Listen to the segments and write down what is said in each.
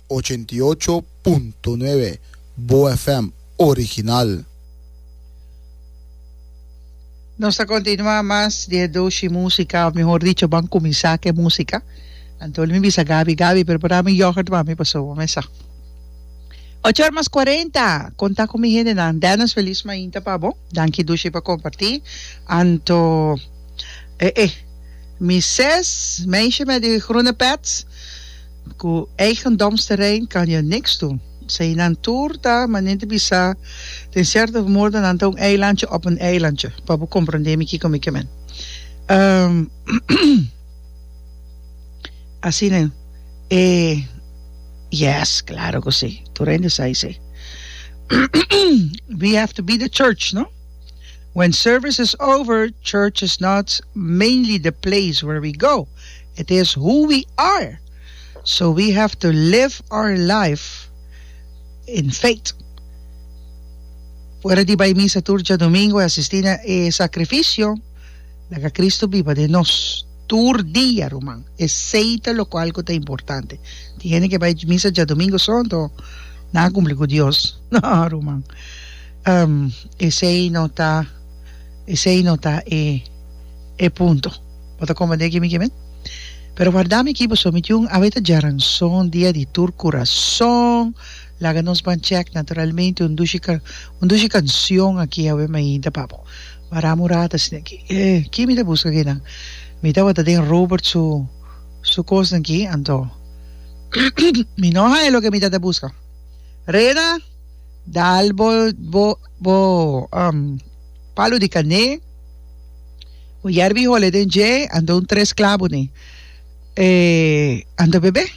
Ochenta i ocho punto nuebe Boa FM original. Nos ta continua mas di e doshi musica o mihor dicho ban cuminsa cu e musica. Antoni mi bisa Gaby, Gaby prepara mi yoghurt mami pasobra bo mesa. Ocho or mas cuarenta conta cu mi hendenan Dennis feliz mainta pa bo. Danki doshi pa comparti Anto eh eh. Mises, meisje met di groene pet ku eigendomsterrein kan jo niks doen. Seinan tur ta manente bisa den sierto modo nan ta un eilandje op un eilandje, pa bo komprondé mi kiko mi ke men. Asina yu e yes, klaro ku si, tur hende sa esei. We have to be the church, no? When service is over, church is not mainly the place where we go, it is who we are. So we have to live our life in faith. Fuera di bai misa tur djadomingo i asisti na e sakrifisio, laga Kristu biba den nos tur dia, ruman. Esei ta lokual ku ta importante. Tin hende ke bai misa djadomingo sòn, tò nan a kumpli ku Dios. Nò, ruman. Am, esei no ta, esei no ta e, e punto. Bo ta komprendé aki mi ke men? Pero warda mi aki paso mi tin un abeta djaranson dia di tur kurason. Laga nos ban chèk naturalmente un dushi ka, un dushi kansion aki awe mainta pa bo. Wara murá ta asina aki. E, ki mi ta buska kinan? Mi tabata den Robert su, su kosnan aki, anto mi no haña loke mi ta ta buska. Reda! Dal bo bo bo um palu di kané. Bo yari biholes den dje, a dun tres klabunen. E a ta bebé.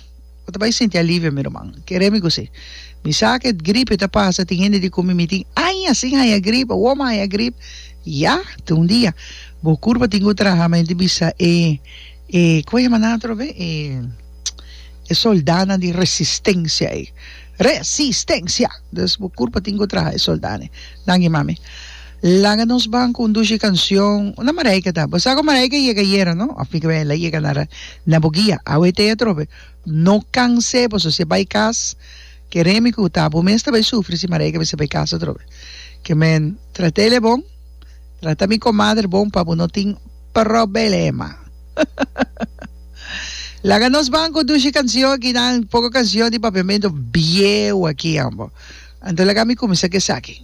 Bo ta bai sinti alivio, mi ruman. Kere mi kusé. Mi sa ke gripe ta pasa, tin hende di kumi mi tin aña sin haña grip, awor mi a haña grip. Ya, te un dia. Bo kurpa tin ku traha, mi hende bisa e, e, ku a yama nan otro be? E, e soldánan di resistensia ei. Resistencia! Dus bo curpa tin cu traha e soldane. Danki mami. Laga nos ban cu un dushi cancion. Unda Marijke ta? Bo sa cu Marijke yega ayera no? Of mi cabia ela yega nara na bo guia? Awe te atrobe. No canse boso. Si e bay cas ke remi cu ta abo mes ta bay sufri si Marijke mester bay cas atrobe. Ke men trata ele bon. Trata mi comadre bon pa bo no tin problema. Laga nos banco dushi cancion ki nan poco cancion di papiamento bieu aki ambo. Anto laga mi cuminsa cu esaki.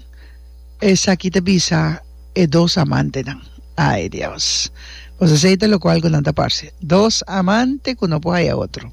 Esaki ta bisa e dos amante nan. Ay Dios. Boso sa ita locual cu nan ta parce. Dos amante cu no por haya otro.